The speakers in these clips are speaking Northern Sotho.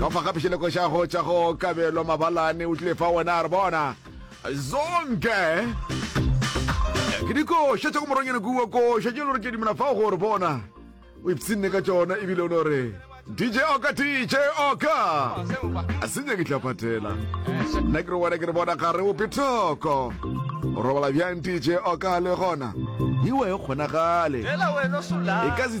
ka fa ga phišeleko xa go tša go kabelo mabalane o tlile fa wena a re bona zonke ke dikoša tša go moronyane kuwa koša tše lore ke dimela fa gore bona o ipshinne ka tšona ebile o no re dj oka dj oka a se nyake tla patela nna ke re wena ke re bona ga re ope thoko o robala bjang dj oka le gona ewa e kgonagale e ka se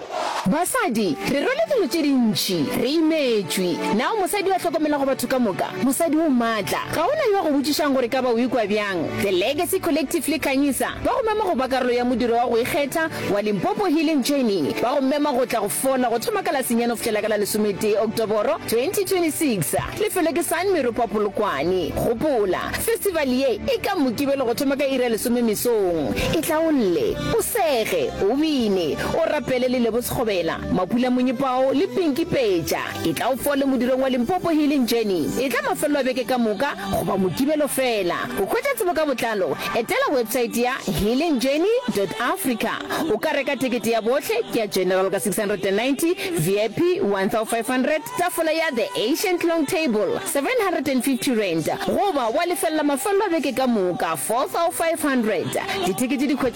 Basadi, re rwele dilo tše dintši, re imetšwe. Na o mosadi yo a hlokomelago batho ka moka? Mosadi yo maatla? Ga go na yo a go botšišago gore e ka ba o ikwa bjang. The Legacy Collective le Khanyisa ba go mema go ba karolo ya modiro wa go ikgetha wa Limpopo Healing Journey. Ba go mema go tla go fola go thoma ka la senyane go fihlela ka la lesometee Oktoboro 2026. Lefelo ke San Meropa Polokwane. Gopola, festival ye e ka Mokibelo go thoma ka iri ya lesome mesong. Itlaolle, o sege, o bine, o rapele le Lebo Sekgobela, Mapula Monyepao le Pinky Peja. E tla o fole modirong wa Limpopo Healing Journey. E tla mafelelo a beke ka moka goba Mokibelo fela. Go hwetša tsebo ka botlalo, etela website ya healingjourney.africa. O ka reka tekete ya bohle, ke ya General ka 690, VIP 1500, Tafola ya The Ancient Long Table, R750, goba wa lefelela mafelelo a beke ka moka, R4,500. Dithekete di hwetšagala.